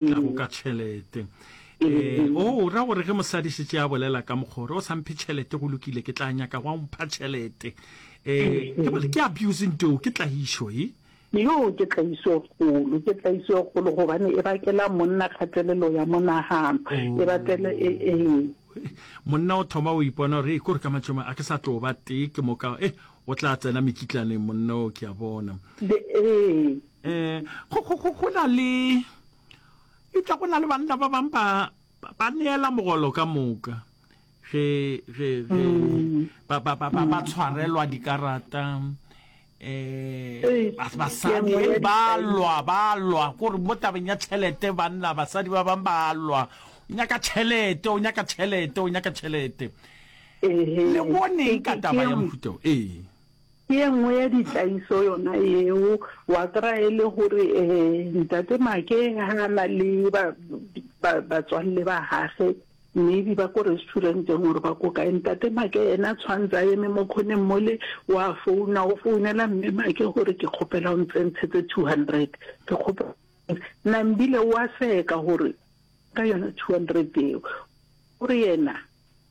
ka go ka tšhelete um o ra gore ge mosadi šetse a bolela ka mokgore o samphe tšhelete go lokile ke tla nyaka go a mpha tšhelete um ke abuse nteo ke tlagišo e yo ke tlagišo e kgolo ke tlagišo e kgolo gobane e bakela monna kgatelelo ya monagano e batele e eng monna o thoma o ipona gore e kore ka matšoma a ke sa tlo ba tee ke moka e O tla tsena mekitlaneng monna o, ke a bona. Eh, go, go, go, go na le, eupša go na le banna ba bang ba, ba neela mogolo ka moka ge ge ge mm. ba ba ba ba tshwarelwa dikarata eh basadi ba lwa ba lwa gore mo tabeng ya tšhelete banna basadi ba bang ba lwa o nyaka tšhelete o nyaka tšhelete o nyaka tšhelete Le boneng ka taba ya mohuta wo? Ee. Ke ye nngwe ya ditlaiso yona yeo. Wa kry-a e le gore um ntate Make ha a na le batswalle ba gage, maybe ba ko restaurant-eng or ba ko kae, ntate Make ene a tshwanetse a eme mo khoneng mole, wa founa, o founela mme Make gore ke kgopela o ntsentshetse two hundred, ke kgopela Nambile wa seka gore ka yona two hundred eo, o re yena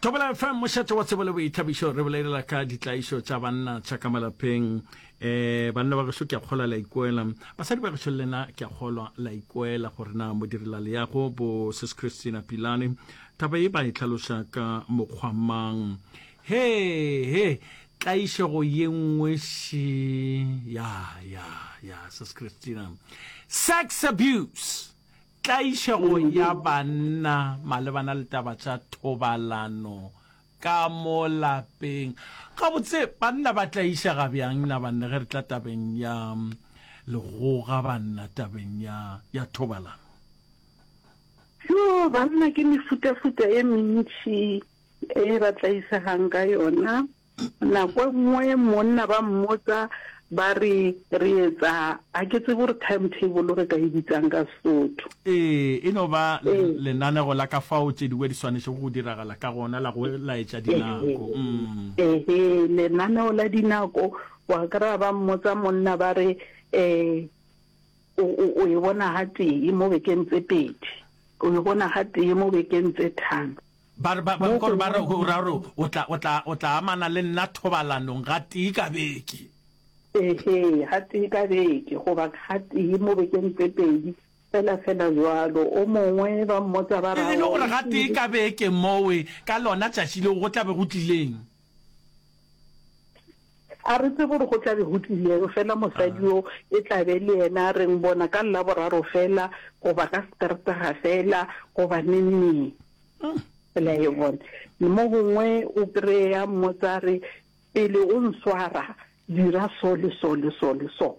Thobela FM mošate wa tsebo le boithabišo re bolelela ka ditlaišo tša banna tša ka malapeng eh banna ba gešo ke a kgolwa la ikoela basadi ba gešo lena ke a kgolwa la ikoela gore na modirela leago bo sis Christina Pilane taba e ba e tlhaloša ka mokgwa mang he he tlaišego ye nngwe si ya ya ya sis Christina sex abuse Tlaišego ya banna malebana le taba tša thobalano ka mo lapeng. Gabotse, banna ba tlaišega bjang na banna ge re tla tabeng ya legoga banna tabeng ya ya thobalano? Yo, banna ke mefutafuta e mentši e ba tlaišegang ka yona. Nako e nngwe monna ba mmotsa ba re re etsa ga ke tsebe gore time table re ka e bitsang ka Sesotho. Ee, e no ba lenanego la ka fao tše dingwe di swanetšego go diragala ka gona la go laetša dinako. Ehe, lenaneo la dinako. Wa kry-a ba mmotsa monna ba re um o e bona gatee mo bekeng tse pedi, o e bona gatee mo bekeng tse tharo. Ba re, ba, ba, kore ba re, o ra gore o tla, o tla, o tla amana le nna thobalanong gatee ka beke. Ehe, gatee ka beke, goba gatee mo bekeng tse pedi, fela, fela bjalo. O mongwe, ba mmotsa ba ra, E le gore gatee ka beke mowe, ka lona tšatši leo go tla be go tlileng? a re tse gore go tla be go tlileng fela mosadi yo e tlabe le yena re ng bona ka la boraro fela goba ka seteretaga fela goba neneng fela e bone mo gongwe o kry-a mmotsa re pele o nswara dira so le so le so le so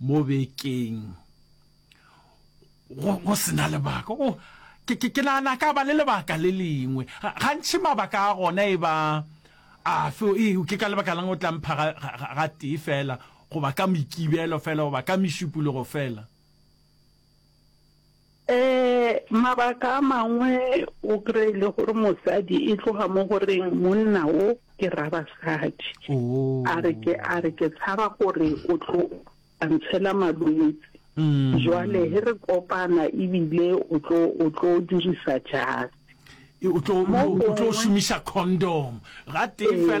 mo bekeng go go sena lebaka o oh, ke ke ke nana ka ba le lebaka le lengwe gantši mabaka a gona e ba a fe e ke ka lebaka lang o tla mpha ga tee fela goba ka moikibelo fela goba ka mešupologo fela Ee, mabaka a mangwe o kry-e le gore mosadi e tloga mo goreng monna o ke ra basadi Oh. a re ke a re ke tshaba gore o tlo a ntshela malwetse Mm. jwale he re kopana ebile o tlo o tlo dirisa jase E, o tlo- o tlo- o tlo šomiša condom ga tee fela